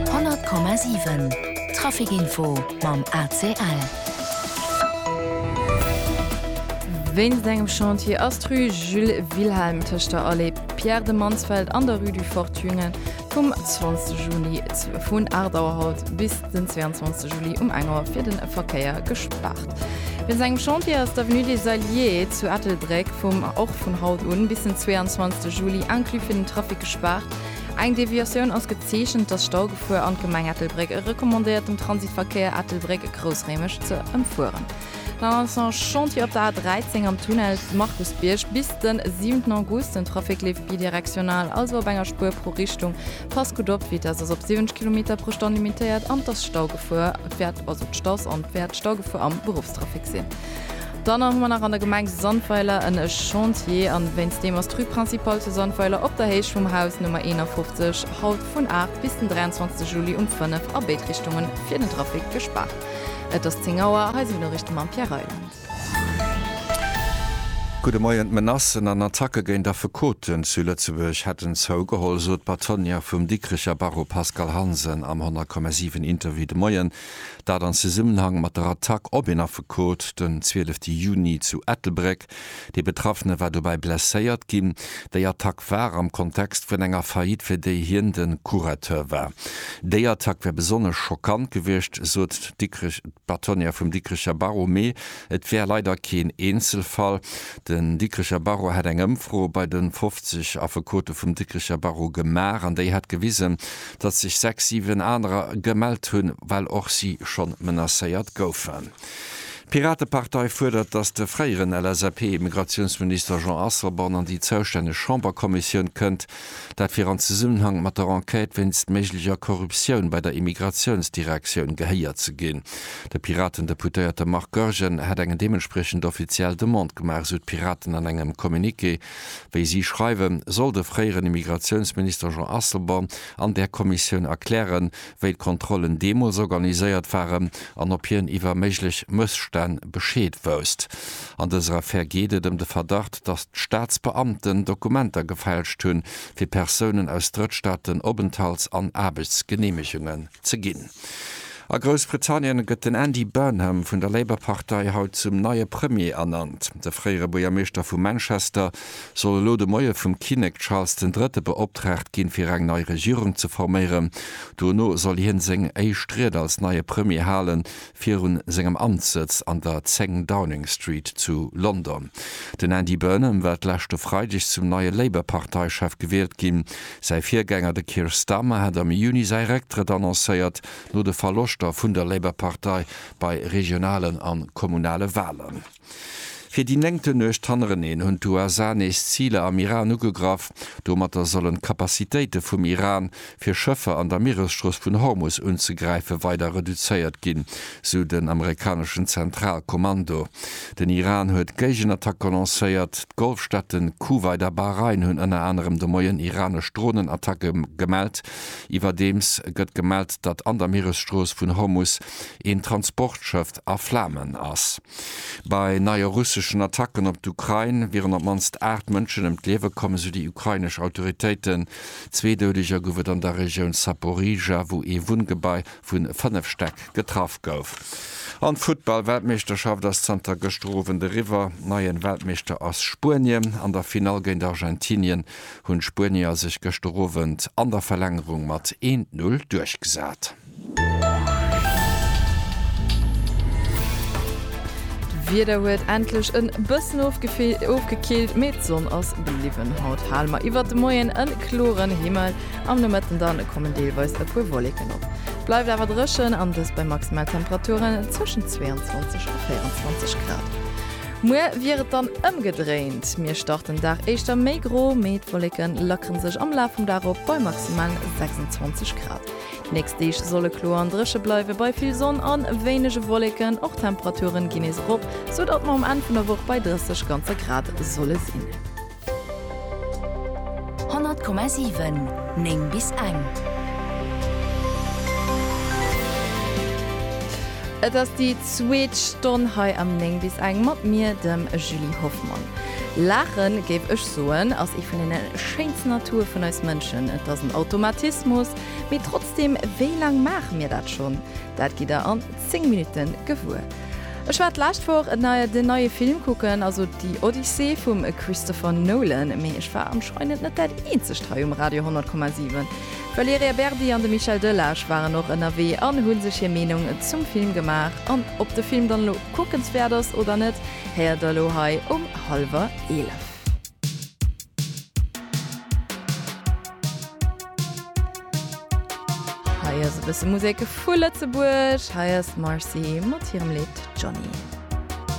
100,7 Trafic Info mam ACL. Wéinst engem Chantier ass d'Rue Jules Wilhelm tëscht der Allée Pierre de Mansfeld an der Rue du Fort Thüngen vum 20 Juli vun 8 Auer haut bis den 22 Juli um 1 Auer fir de Verkéier gespaart. Wéinst engem Chantier ass d'Avenue des Alliés zu Ettelbréck vum och vun haut un bis den 22 Juli inclus fir den Trafic gespaart. Eng Deviatioun ass gezeechent, dass Staugefuer an d'Gemeng Ettelbréck e recommandéiert dem Transitverkéier Ettelbréck, Groussréimech ze ëmfueren. Nach als en Chantier op der A 13 am Tunnel Markusbierg bis den 7 August. Den Trafic leeft bidirektional, also op enger Spuer pro Richtung. Passt gutt op, d'Vitesse ass op 70 Kilometer pro Stonn limitéiert an d'Staugefuer wäert am Beruffstrafic sinn. Dann hu mer nach an der Gemeng Sandweiler en Chantier an wéinst deem ass d'Rue Principale zu Sandweiler op der Héicht vum Haus Nummer 51 haut vun 8 bis den 23 Juli um 5 a béid Richtungen fir den Trafic gespaart. Et ass 10 Auer, hei sinn d'Noriichte mam Pierre Reyland. Gudde Moien, Menacen an Attacke géint Affekoten zu Lëtzebuerg hätten zougeholl, sot d'Patronne vum Dikricher Barreau Pascale Hansen am 100,7 Interview de Moien. Dat an Zesummenhang mat der Attack op een Affekot den 12 Juni zu Ettelbréck. De Betraffene war dobäi blesséiert ginn. Déi Attack war am Kontext vun enger Faillite, fir déi hien de Curateur war. Déi Attack wär besonnesch schockant gewiescht, sot d'Bâtonnière vum Dikricher Barreau. Mee et wär leider keen Eenzelfall. Den Dikricher Barreau hätt eng Ëmfro bei de 50 Affekote vum Dikricher Barreau gemaach an déi hätt gewisen, datt sech sechs, siwen anerer gemellt hunn, well och si schonn menacéiert goufen. D'Piratepartei fuerdert, datt de fréieren LSAP-Immigratiounsminister Jean Asselborn an déi zoustänneg Chamberkommissioun kënnt, dat fir an Zesummenhang mat der Enquête wéinst méiglecher Korruptioun bei der Immigratiounsdirektioun gehéiert ze ginn. De Piraten-Deputéierte Marc Goergen hätt eng deementspriechend offiziell Demande gemaach, esou d'Piraten an engem Communiqué. Wéi si schreiwen, soll de fréieren Immigratiounsminister Jean Asselborn an där Kommissioun erklären, wéi d'Kontrollen deemools organiséiert waren an ob hien iwwer méiglech Mësstänn Bescheed wousst. An dëser Affär geet et ëm de Verdacht, datt d'Staatsbeamten Dokumenter gefälscht hunn, fir Persounen aus Drëttstaaten Openthalts an Aarbechtsgeneemegungen. ze ginn. A Groussbritannien gëtt den Andy Burnham vun der Labour-Partei haut zum neie Premier ernannt. De fréiere Buergermeeschter vu Manchester soll elo de Moie vum Kinnek Charles den Drëtte beoptraagt ginn, fir eng nei Regierung ze forméieren. Dono soll hien seng éischt Ried als neie Premier halen, virun sengem Amtssëtz an der 10 Downing Street zu London. Den Andy Burnham war d'leschte Freideg zum neie Labour-Parteichef gewielt ginn. Säi Virgänger, de Keir Starmer, hat am Juni säi Récktrëtt annoncéiert, no de Verloschter vun der Labour-Partei bei regionalen a kommunale Walen. Fir déi néngte Nuecht hannereneen hunn d'USA nees Ziler am Iran ugegraff. Domatter sollen d'Capacitéite vum Iran, fir Schëffer an der Mieresstrooss vun Hormus unzegräife weider reduzéiert ginn, sou den amerikaneschen Zentralkommando. Den Iran huet Géigenattacke lancéiert. D'Golfstaaten Kuwait a Bahrain hunn ënner anerem de Moien iranesch Dronenattacke gemellt. Iwwerdeems gëtt gemellt, datt an der Mieresstrooss vun Hormus een Transportschëfft a Flamen ass. Bei neie russeschen Attacken op d'Ukrain wieren op d'mannst aacht Mënschen ëm d'Liewe komm, esou déi ukrainesch Autoritéiten. Zwee Doudeger gouf et an der Regioun Zaporizhzhia, wou ee Wunngebai vu fënnef Stäck getraff gouf. An Futtball, Weltmeeschterschaft ass zanter gëschter Owend eriwwer. Neien Weltmeeschter ass Spuenien. An der Finall géint Argentinien hunn d'Spuenier sech gëschter Owend an der Verlängerung mat 1, 0 duerchgesat. D'Wieder huet endlech en bëssen ofgekillt, mee d'Sonn ass bliwwen. Haut hale mer iwwert de Moien en kloren Himmel, am Nomëtten dann kommen deelweis e puer Wolleken op. Et bleift awer dréchen, an dëst bei Maximaltemperaturen zwëschen 22 a 24 Grad. Muer wier et dann ëmgedréint, mir starten den Dag éischter méi gro, mee d'Wolleke lackere sech am Laf vum Dag op bei maximal 26 Grad. D'nächst Deeg solle kloer an dréche bleiwen, bei vill Sonn a wéinege Wolleken. Och d'Temperature ginn nees erop, sou datt mer um Enn vun der Woch bei 30 ganze Grad solle sinn. 100,7 9 bis eng. Et ass déi zweet Stonn hei am 9 bis eng mat mir, dem Julie Hoffmann. Laache géif ech. Soen ass ee vun den schéinsten Atour vun eis Mënschen. Et ass en Automatismus, mee trotzdem, wéi laang maache mir dat schonn? Dat gitt der an 10 Minutten gewuer. Ech war d'lescht Woch den neie Film kucken, also Die Odyssee vum Christopher Nolan, mee ech war anscheinend net dat eenzegt hei um Radio 100,7. D'Valerija Berdi an de Michel Delage waren och ënnerwee an hu sech hir Meenung zum Film gemaach. An ob de Film dann elo kuckenswäert ass oder net, héiert der elo hei um hallwer 11. Hei ass e bësse Musek vu Lëtzebuerg, hei ass d'Marcy mat hirem Lidd Johnny.